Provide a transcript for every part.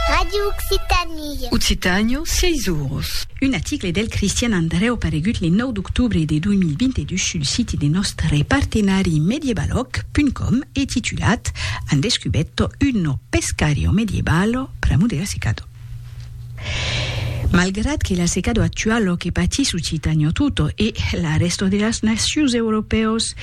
Radio Occitanie. Occitània, 6 oros. Un aticle del Cristian Andrèu paregut le 9 d'octobre de 2022 sul siti de nòstre partenari mediebalog.com e titulat, Han descubetto uno pescario medievalo, Pramudera Secado. Malgrat que l'assecado actual lo que patís Occitanio tutto e la resto de las nacius europèus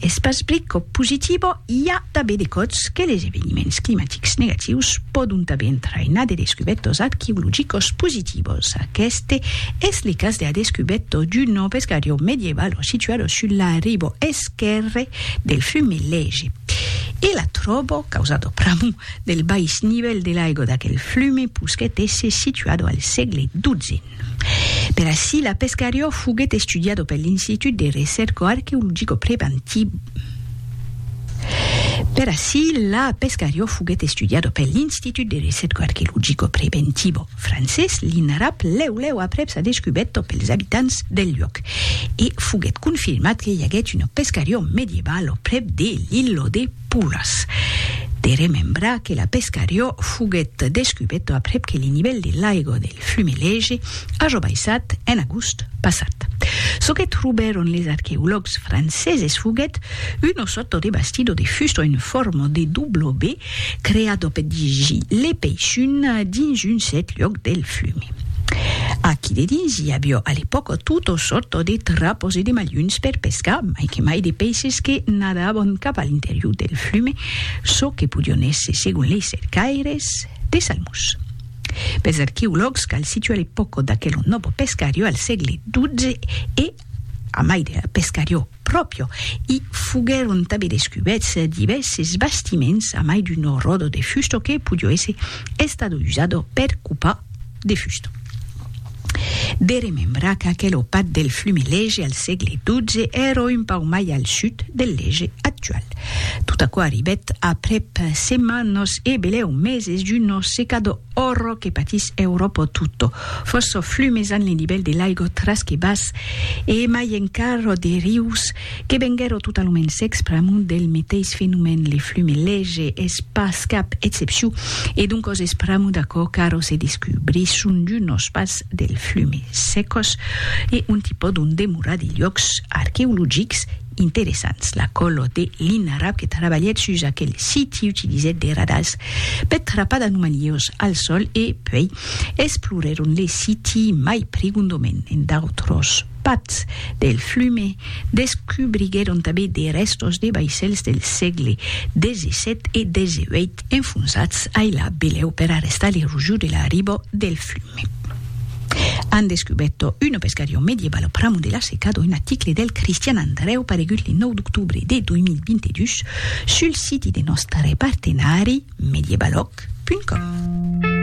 es pas plico positivo, i a tabé de còts que les eveniments climatics negatius pòdon tabé entrainar de descubètos arqueologicos positivos. Aqueste es le cas de la descubèto d'un nòu pescariu medievalo situado sul la ribo esquèrre del fume Lege. E la tròbo, causado pr'amor del bais nivèl de l'aigo d'aquel flume posquèt èsser situado al sègle xii. Per ací la pescariò foguèt estudiado per l'Institut de Recèrco Arqueologico Preventiva Per ací la pescariò foguèt estudiado per l'Institut de Recèrco Arqueologico Preventivo francés, l'INRAP, lèu lèu aprèp sa descubèrta pels abitants del luòc e foguèt confirmat que i aguèt una pescariò medievalo prèp de l'Illo de puras. De remembrar que la Pescariò foguèt descubeta aprèp que li nivèl de l'aiga del Fumelege aja baissat en agost passat. Çò que trobèron les arqueològs franceses foguèt una sòrta de bastidor de fusta en forma de W creada per dirigir le peixun dins un cèrt luòc del Fume. Aquí de dins i avió a l'epòca tota sòrta de trapos e de malhons per pescar, mai que mai de peisses que nadavon cap a l'interior del flume, çò que podion èsser, segon lei cercaires, de salmons. Pels arqueològs cal situar l'epòca d'aquel nòbo pescariò al sègle XII e, a mai de la pescariò, Pròpio, i foguèron tanben descubèts divèrses bastiments a mai d'un rodo de fusto que podió èsser estat usat per copar de fusto. De remembrar qu'aquel opat del flume Lege al sègle XII èra un pauc mai al sud del Lege actual. Tot aquò arribèt aprèp setmanas e belèu meses d'un secador. Òrro que patís Euròpo tutto, fòrço flumes an le nivèl de l'aigo tras que bas e emai encarro de rius que venguèro totalument secs pr'amont del meteis fenomèn, le flume lege es pas cap excepciu e doncòs es pr'amont d'aquò qu'arro se descubri son d'unos pas del flume secos e ont i pòdon demorar de luòcs arqueologics interessants. La color de l'inarab que trabalhèt sus aquel siti utilizèt de radars per trapar d'anomalíos al sol e puèi explorèron le siti mai prigondament en d'autros pats del flum e descubriguèron tanben de rèstos de vaissèls del sègle xvii e xviii enfonsats ailà belèu per arrestar l'erosion de la riba del flum. an descubèto una pescarion medievale au pramo de la Seca d'un article del Cristian Andrèu paregut le 9 d'octobre de 2022 sul siti de nòstre partenari medievalòg.com.